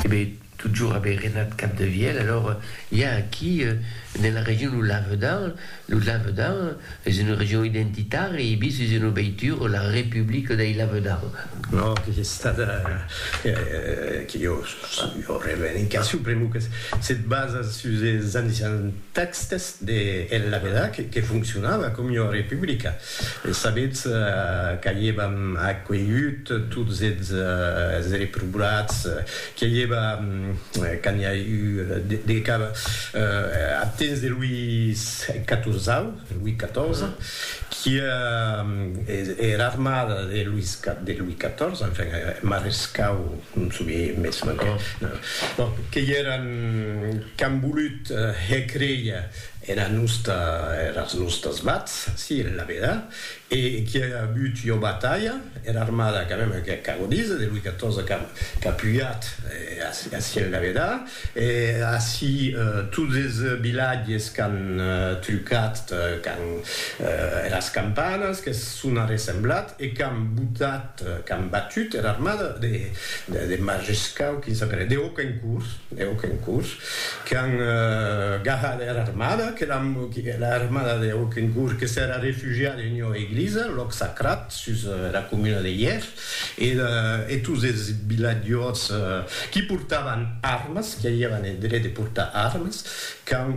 E be, totjorn a be renat Capdevièlh, alors i a aquí ne la region lo Lavedan, lo Lavedan es una region identitària e bis es una veitura la Republica dei Lavedan. No, que es estada, que jo sàbia, revendicacion pr'amor que se basa sus es anician tèxtes de El Lavedan que foncionava coma una republica. E sabetz qu'aievam acuelhut tots es reprobats, que i eva, quand n'i a eu de cap, ath temps de Louis Catorzau, Louis Catorze, qui era armada de Louis de Louis Catorze, enfin, marescau, non soubie mès manquen, bon, que i eran qu'an volut hèr créer, Era nosta, eras nostas vats, si, en la veda, e qui a avut ua batalha, era armada, quand même, que qu'a godís, de Louis XIV qu'a qu'a pujat ací en la veda, e ací tots es vilatges qu'an trucat, qu'an eras campanas que son arressemblat e qu'an botat, qu'an batut era armada de de de Majescau, quin s'apelèt, de Hauquencourt, de Hauquencourt, Qu'an gahat era armada, que era armada de Aukhencourt que s'èra refugiada en ua eglisa, lòc sacrat, sus era comuna de Yèr, e tots es vilatjors qui portavan armas, qui avián eth dret de portar armas, qu'an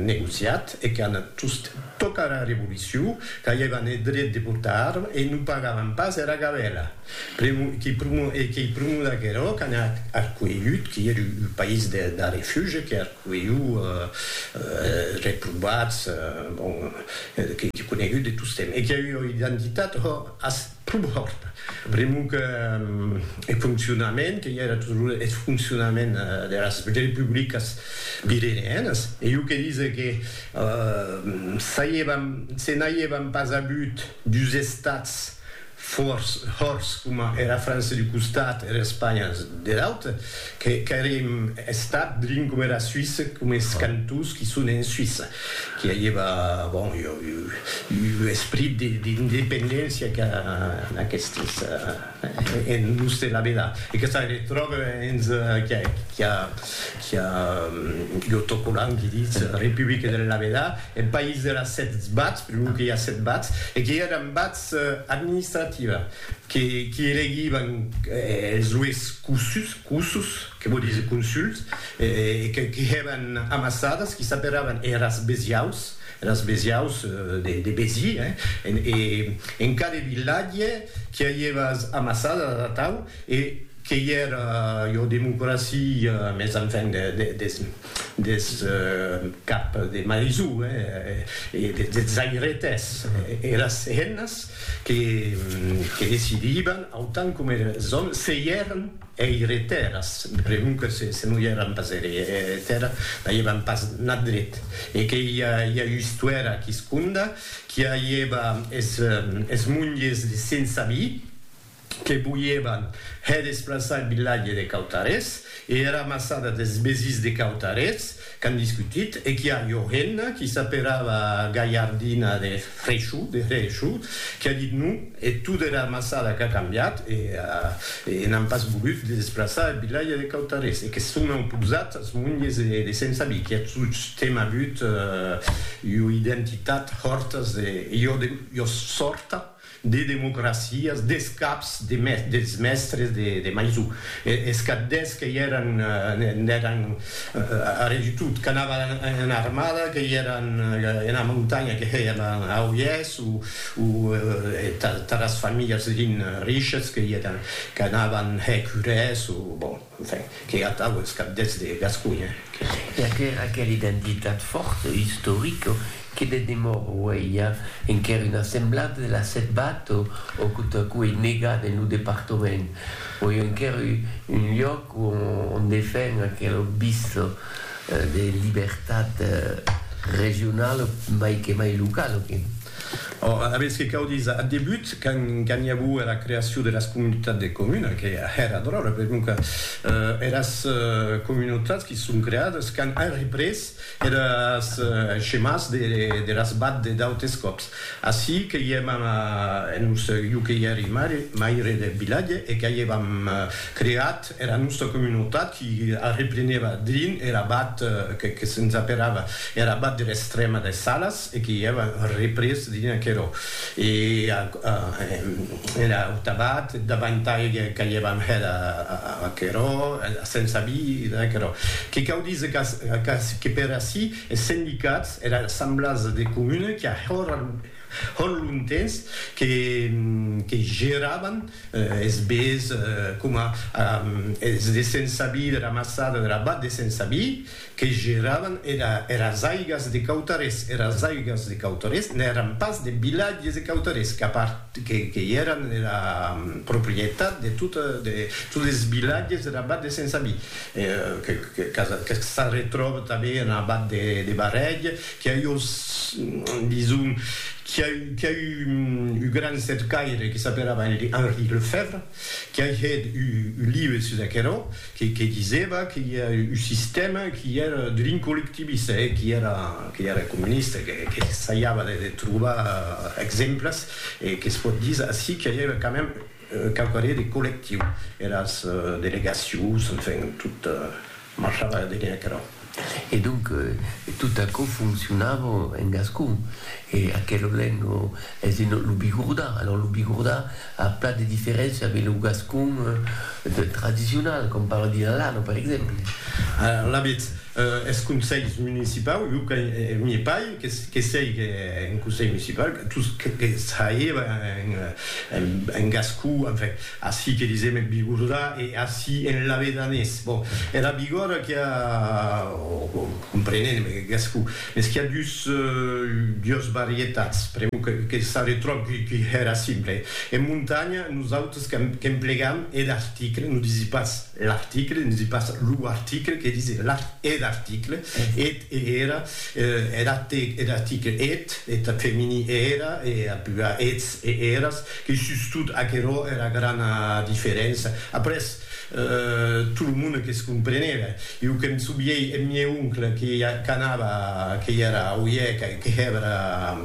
negociat e qu'an tost, tòca era revolucion, qu'avián eth dret de portar armas e non pagavan pas era gabèla. Pr'u qui pr'u e qui pr'u d'aguerò qu'an arcuelhut, qui er u país de da refuge que arcuelhu er reprobats, bon, qui qui conegut de tostemp e qui a ua identitat ho as pr'u hòrta, pr'u que e foncionament que i era tosrure eth foncionament deras republicas virerianas, e u que dise que s'aievan se n'aievan pas avut dus estats, Fòrç, hòrç, coma era França d'u costat, era Espanha der aute, que qu'airem estat drin coma era Suisse, coma es cantons qui son en Suisse, qui aieva, bon, u esprit d'independéncia qu'a aquestes en los de la vela, e que se retròbe hens qu'a qu'a l'autocollant qui ditz Republica der la vela, en país der a sèt bats, per lo que i a sèt bats, e qui èran bats, administrativa que qui elegivan es lues cussus, cussus, que vò dire consuls, qui hèvan amassadas, qui s'aperavan eras besiaus, eras besiaus de Besi, en cada vilatge qui avieva as amassadas atau e qu'ei era ua democracia, mès enfin des des cap de maisó e des zairetes e las hennas que decidivan autant coma es òmes se i èran eiretèras, me pregunto se non i èran pas eiretèras, n'avián pas nat dret e que i a ua istuèra quisconda qu'i avieva es monges de sense avis, que voièvan hè desplaçar en vilatge de Cautarets e era maçada des Besís de Cautarets qu'an discutit e qu'i a Johenna qui s'aperava Galhardina de Frechou, de Hrechu, qui a dit non e tot era maçada qu'a cambiat e e n'an pas volut de desplaçar eth vilatge de Cautarets e que son auposats as monges de Sensabí qui a tostemp avut ua identitat hòrtas de Jòrta. de democracias, des caps de mes, dels mèstres de, de Maisou, e, es cap d'es que i èran, n'èran arrè du tot, qu'anavan en, en armada, que i èran ena montanha, que hèi ena Auiés, o, o tath, tath es familhas rin, riches, que i èran, qu'anavan hèr curès, o, bon. Enfin, qu'ei atau es cabdets de Gasconha que. E aquera aquela identitat fòrta, istorica, que de demòra uei i a enquèr una semblada de la Setbat o o quo ta quo ei negada en lo departament. Uei enquèr u un lloc o on defen aquela obvisa de libertat regionala mai que mai locala que. Ora, aviètz que cau díser, ath debut, quand i avou era creacion de las comunitats de comuna, que èra dròlle, per non que eras comunautats qui se son creades quand an représ eres schemàs de las bad de d'autes còps. Ací que i èm en un, jo que i èri maire deth vilatge e qu'a i èvam creat Era nòsta comunautat qui arreplenèva drin er abat que se'ns aperava er abat der Estrèma des Salas e que i èva représ drin aquerò. E era auta abat davantai qu'aievam hèt aquerò, era sensa vida, aquerò. Que cau díser qu'ac que per ací es sendicats, era assemblasa de comuna qui a Hòn lontens que que geravan es bés coma es de Sensabi de la maçada de la Bat de Sensabi que geravan era eras aigas de Cautarés, eras aigas de Cautarés n'èran pas de vilatges de Cautarés qu'a part que que i èran era proprietat de tota de tots es vilatges de la Bat de Sensabi que que que s'arretròba tanben ena Bat de de Barrèg. Qu'i a eu, dison, qu'i a eu, qu'i a eu un gran cercaire que s'aperava Henri Lefèvre, qu'i a hèt un live sus aquerò, que disèva que i a un sistèma qu'i èra drin collectivista e qu'i èra, qu'i èra comunista, qu'essaiava de trobar exemples, e que's pòt díser ací qu'i a eu quand même quauquarré de collectiu, eras delegacions, enfin, tot, Marchava a vener aquerò. E donc, tot aquò foncionava en gascon. E aquel olent lo, es de lo bigordà. Alòs lo bigordà a plan de diferéncia de lo gascon tradicional, com per dire l'Alano, per exemple. Alavetz, es conselhs municipaus, jo que n'i pai, que sèic en conselh municipau, tot que saiba en gascon, enfin. Ací que disèm eth bigordà e ací en lavedanés. Bon, era bigòrda qu'i a, o comprenent me gasco, mès qu'i a dus, dues varietats, pr'amor que s'arretròb qu'i hèra simple. En montanha, nosautres qu'emplegam eth article, non disi pas l'article, non disi pas lo article, que disi eth article, eth e era, er article, eth, eth femení, era, e ath plural, eths e eras, E sustot aquerò èra grana diferença. Après, tot lo monde que's comprenèva. Jo que'm souvièi eth mieu oncle que qu'anava, que i èra au hièc, que hèbra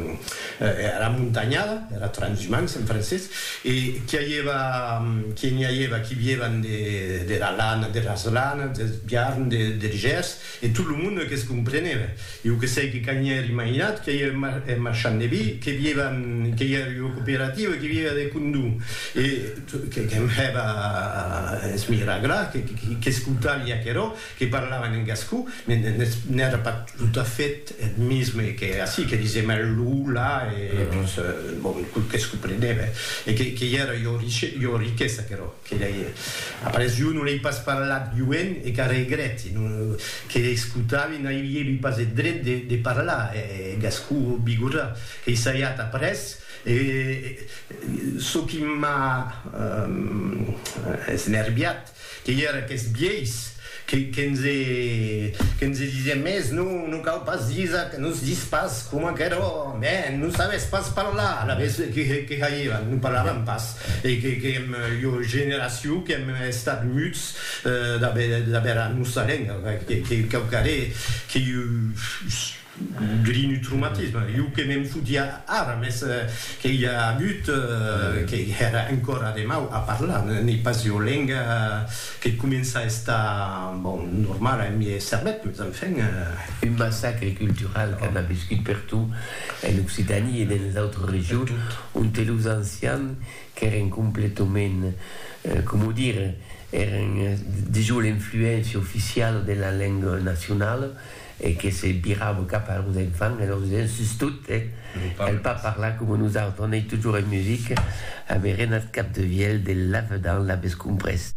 era montanhada, era transhumance en francés, e qu'i aièva, que n'i aièva qui vièvan dera lana, deras lanas, deth biarn, der gèrs, E tot lo monde que's comprenèva. Ieu que sei que quand ièr imaginat que ièr un marchand de vi, que vièva, que ièr ua cooperativa, que vièva de condó, e que'm hèva es miragrar, qu'escoutaria aquerò, que parlavan en gascon, n'èra pas tot a fait eth mesme que ací, que disèm el lo, la, e bon, que's comprenèva, e que ièra ua richesa aquerò. Que lei après jo non lei pas parlat joen e qu'a regrèti que l'escotavi n'ailievi pas eth dret de parlar e gascon bigorra qu'ei saiat après e çò qui m'a esnerviat qu'ei era qu'es vielhs Que nse disien mès, non, non cau pas disar que nos dis pas com aquerò, mèn, non sabes pas parlar, alavetz que haièvan, non parlavan pas, e qu'èm ua generacion qu'èm estat muts d'aver a nosta lenga, quauquarré que Grinutrumatisme, jo que me'n fotia ara, mès que i a agut que hèra encora de mau a parlar, n'ei pas ua lenga que comença a estar, bon, normala en miei cervèth, mès enfin. Un massacre cultural qu'an aviscut per tot, en Occitània e denes autres regions, onte los ancians qu'èren completament, coma dire, èren dejós l'influéncia oficiala de la lenga nacionala, e que se virava cap a los enfants e lor disián, sustot, eh, cal pas parlar coma nosautres, on ei totjorn en musica, avèren ath cap de vielh de lavedan, l'aves comprés?